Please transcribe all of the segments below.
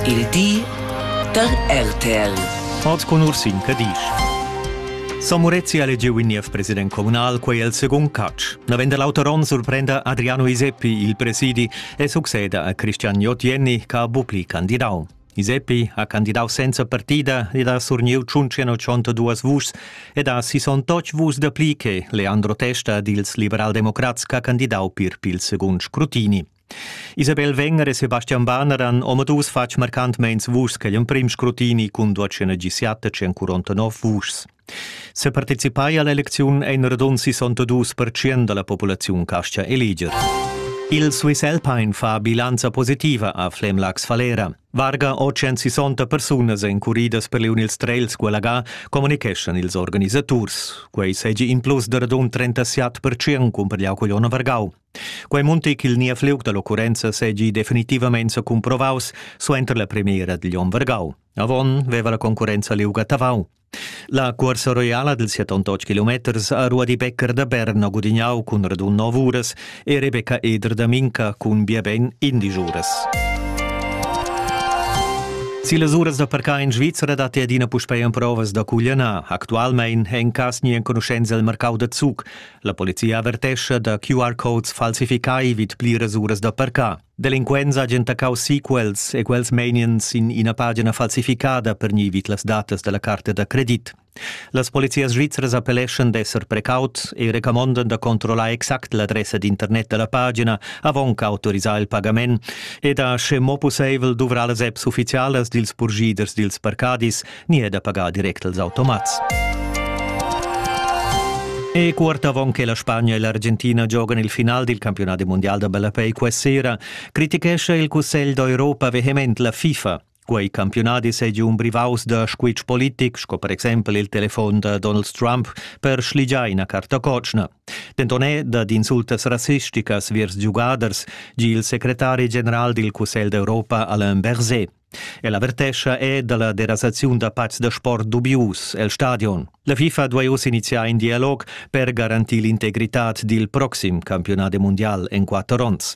Il di da RTL. Hoz cun Ursin Cadisch. Son Murezi ha elegiu in niev president communal, quei el secund catch. Navenda l'auteron surprenda Adriano Iseppi il presidi e succeda a Cristian Jotienni che ha bucli candidau. Iseppi ha candidau senza partida ed ha surniu 182 vuschs ed ha 68 vuschs da pli che Leandro Testa dils liberaldemocrats che ha candidau pir pil secund scrutini. Isabel Wenger e Sebastian Banner han omadus fatg marcantmeins vuschs ch'ei emprim scrutini cun duatg negiziata tschien curontanov vuschs. Separticipai all'elecziun ein radund 62% dalla populaziun castgia eleger. Il Swiss Alpine fa bilanza positiva a Flemlax Falera. Varga 860 persunas encuridas per liun ils trails Gualaga communicheschan ils organisaturs. Quei segi in plus da radund 37% cun per Vargau. Quei munti ch'il niev liug dall'occurrenza seigi definitivamein secumprovaus suenter la premiera digl onn vargau. Avon veva la concurrenza liug a Tavau. La cuorsa roiala dils 78 kilometers ha Ruadi Becker da Berna gudignau cun radun nov uras e Rebecca Eder da Minca cun biaben indisch uras. Si las uras da parcar in Svizzera datti adina puspei emprovas da cuglianar. Actualmein è in cas ni enconuschenza il marcau da Zug. La polizia avertescha da QR-codes falsificai vid pliras uras da parcar. Delinquents hajan taccau sequels e quels meiniens in ina pagina falsificada per ni vid las datas della carta da credit. Las polizias svizras appelleschan d'esser precaut e recamondan da controllar exact l'adressa d'internet della pagina avon qu'autorisar il pagament e da, sche mo pusseivel, duvrar las apps ufficialas dils purschiders dils parcadis ni è da pagar direct als automats. E quart avon che la Spagna e l'Argentina giogan il final dil campionat mundial da ballapei questa sera, critichescha il Cussegl d'Europa vehement la FIFA. Quei campionadi seigi un brivaus da squitsch politic, sco per exempel il telefon da Donald Trump per schligiar ina carta cotschna. Denton è dad insultas rassisticas viers giugaders, gi il secretari general dil Cussegl d'Europa Alain Berset. El avertescha è dalla derasaziun da pazs da sport dubius el stadion. La FIFA duai uss iniziar in dialog per garantir l'integritad dil proxim campionat mundial en quatter onns.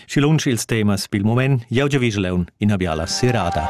Schi lunsch ils temas pil moment, jau Vigeleun, ina biala serada.